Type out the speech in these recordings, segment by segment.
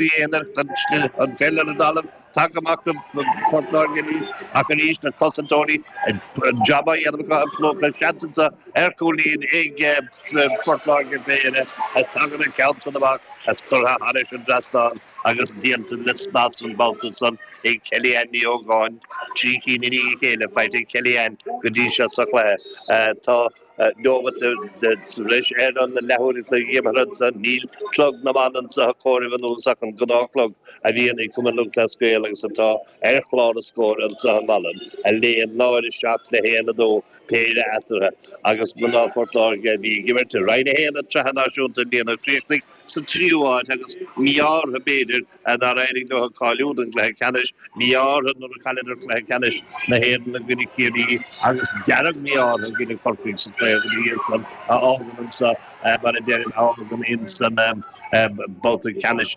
Bhí aonair den stil an pheil ar an dtalamh tagtha amach do Port Láirge arís ach arís na cosantóirí ag jab á dhéanamh acu ag plúchadh na seansanna ar chúilín ag Port Láirge B'é eile as tagann an ceann san amach as curtha thairis an dtreasnán agus déanta le snas an babhta san ag Kellyanne Ní Ógáin trí chinn i ndiaidh a chéile faighte ag Kellyanne go dtí seo sa chluiche. Tá Neomat sa bhreis ar an leathuair an chloig imeartha anseo, níl clog na mban anseo ag comhaireamh anuas ach an gnáthchlog a bhíonn ag Cumann Lúthchleas Gael agus atá ar chlár a scóir anseo i Mala, a léann náid a seacht le haon a dó péire eatarthu agus mná Phort Láirge a bhí ag imirt i Roinn 1 den tSraith Náisiúnta i mbliana a chríochnaigh sa tríú háit agus mí-ádh orthu, b'fhéidir, Nár éirigh leo cáiliú don gcluiche ceannais mí-ádh orthu nuair a chailleadar cluiche ceannais na hÉireann i gcoinne Chiarraí agus dearg-mhí-ádh orthu i gcoinne Chorcaigh sa chraobh ina dhiaidh san a fhágann anseo mar a deirim a fhágann ins an babhta ceannais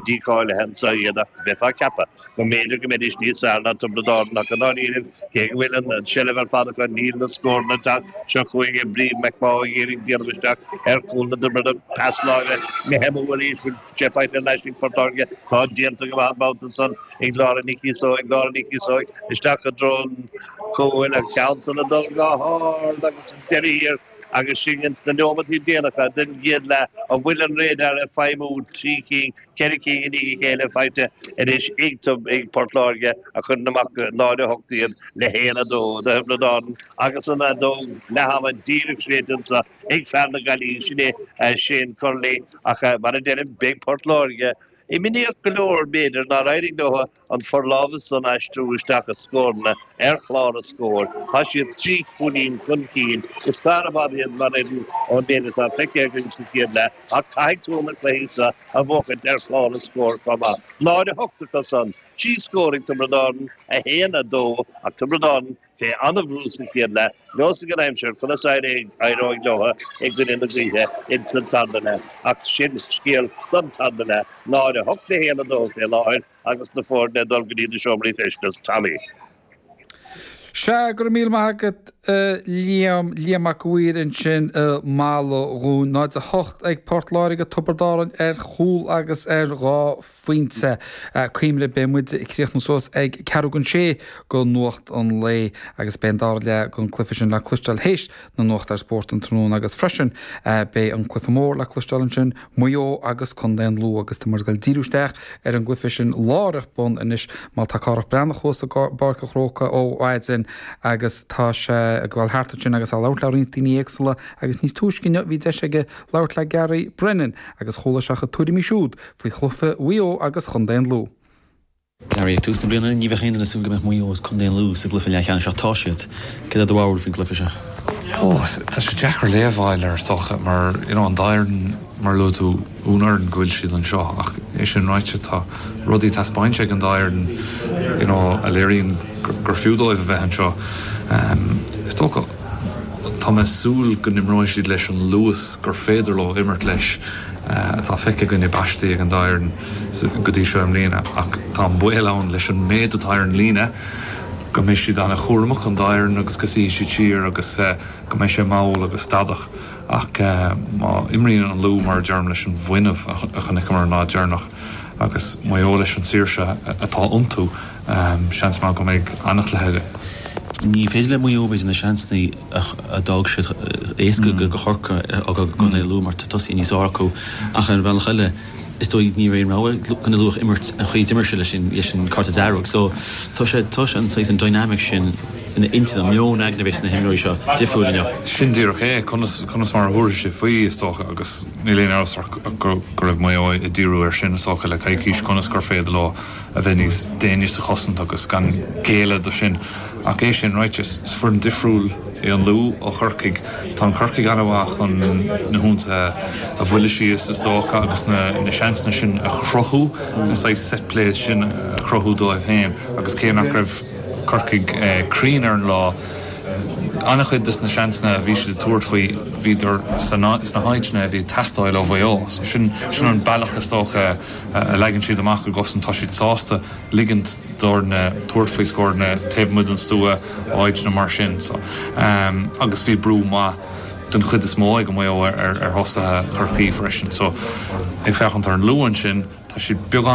dícháilithe anseo iad ach bheifeá ag ceapadh go mb'fhéidir go mbeidís níos fearr ná Tiobraid Árann ach i ndáiríre cé go bhfuil an tseilbh ar fad acu níl na scóranna ag teacht seo chugainn Bríd McMaugh ag iarraidh déanamh isteach ar chúl na dTiobradach pas láimhe maith Emma arís Sé faighte anois ag Port Láirge atá déanta go maith an babhta san ag Lára Nic Íosóig, Lára Nic Íosóig isteach i dtreo an chúil, an ceann san ag dul go hard agus ag deireadh thiar agus sinn ins na neomataí déanacha den gcéad leath, an bhfuil an radar ag feidhmiú trí cinn, ceithre cinn i ndiaidh a chéile faighte anois iontub ag Port Láirge a chuireann amach go 0:08 iad le 1:02 do Thiobraid Árann agus an fheadóg leath-ama díreach séidte ansan Ag fear na Gaillimhe sin é, Shane Curley, ach mar a deirim, beidh Port Láirge imníoch go leor b'fhéidir nár éirigh leo an forlámhas san a aistriú isteach i scóranna ar chlár a scóir. Tá siad trí chúilín chun cinn. Is fearr i bhfad iad mar fhoireann ón méid atá feicthe againn sa chéad leath ach caithfidh tú na cluichí seo a bhuachaint ar chlár a scóir chomh maith. 0, 8 acusan. Trí scór ag Tiobraid Árann, 1, 2 ach Tiobraid Árann Fé an-bhrú sa chéad leath. Neosfaidh an aimsir conas a éireoidh leo i gcoinne na gaoithe ins an tarna leath ach sin scéal don tarna leath. 0:08 le 1:02 fé láthair agus na foirne ag dul go dtí na seomraí feistis. Tommy. Sea, go raibh míle maith agat a Liam, Liam Mac an Mhaoir ansin i Mala dúinn, 0:08 ag Port Láirge, Tiobraid Árann ar chúl agus ar dhá phointe. Cuimhnigh beidh muid ag críochnú suas ag ceathrú don sé go Nuacht an Lae agus beidh an dara leath den chluiche sin le cloisteáil théis na nuachta ar Spórt an tráthnóna agus freisin beidh an cluiche mór le cloisteáil ansin, Maigh Eo agus Contae an Lú agus tá muid ag díriú isteach ar an gcluiche sin láithreach bonn anois mar tá Cárthach Breathnach thuas i bPáirc an Chrócaigh ó mhaidin agus tá sé ag gabháil thart ansin agus é ag labhairt le roinnt daoine éagsúla agus níos túisce inniu bhí deis aige labhairt le Gary Brennan agus chuala sé a chuid tuairimí siúd. faoi chluiche Mhaigh Eo agus Chontae an Lú. Ag tús na bliana ní bheadh aon duine ag súil go mbeadh Maigh Eo agus Contae an Lú sa gcluiche leathcheannais ach tá siad. Cad é do bharúil faoin gcluiche seo? Tá sé deacair léamh a fháil air so mar you know an dá fhoireann mar a luaigh tú is ábhar iontais go bhfuil siad anseo ach é sin ráite tá rudaí taispeáinte ag an dá fhoireann you know a léiríonn gur fiú dóibh a bheith anseo. Is dócha tá mé ag súil go n-imreoidh siad leis an luas gur féidir leo imirt leis. atá feicthe againn i bpaistí ag an dá fhoireann go dtí seo i mbliana ach tá an baol ann leis an méid atá ar an líne go mbeidh siad an-chúramach, an dá fhoireann, agus go suífidh siad siar agus go mbeidh sé mall agus stadach ach má imríonn an Lú mar a deirim leis an bhfuinneamh a chonaiceamar an lá deireanach agus Maigh Eo leis an tsaoirse atá iontu seans maith go mbeidh an-chluiche againn. Ní féidir le Maigh Eo a bheith ina seansanna. a d'fhág siad éasca do Chorcaigh go Contae Lú mar tá tosaithe níos fearr acu ach ar an bhealach eile is dóigh níorbh aon rogha gan a luach a imirt an chaoi d'imir sé leis an leis an cárta dearg so tá sé tá sé an saghas an dynamic sin ina intinn an meon aigne a bheidh sna himreoirí seo difriúil inniu. Sin díreach é, conas conas mar a thabharfaidh siad faoi is dócha agus níl aon amhras ach go go raibh Maigh Eo ag díriú air sin is dócha le coicís conas gur féidir leo a bheith níos déine sa chosaint agus gan géilleadh do sin. Ach é sin ráite, is foireann difriúil é an Lú ó Chorcaigh. Tá an Corcaigh an-mhaith chun na hionsaithe a bhuiladh síos is dócha agus na seansanna sin a chruthú, na saghas set plays sin a chruthú dóibh féin agus cé nach raibh Corcaigh cruinn ar an lá, an-chuid de na seansanna a bhí siad ag tabhairt faoi, bhíodar sna háiteanna a bhí ag teastáil ó Mhaigh Eo. So sin an bealach is dócha. a leagann siad amach a gcosaint, tá siad sásta ligint d'fhoirne tabhairt faoi scóranna taobh amuigh den stua ó áiteanna mar sin so agus bhí brú maith den chuid is mó ag Maigh Eo ar thosaithe Chorcaí freisin so ag féachaint ar an Lú ansin, tá siad beagán.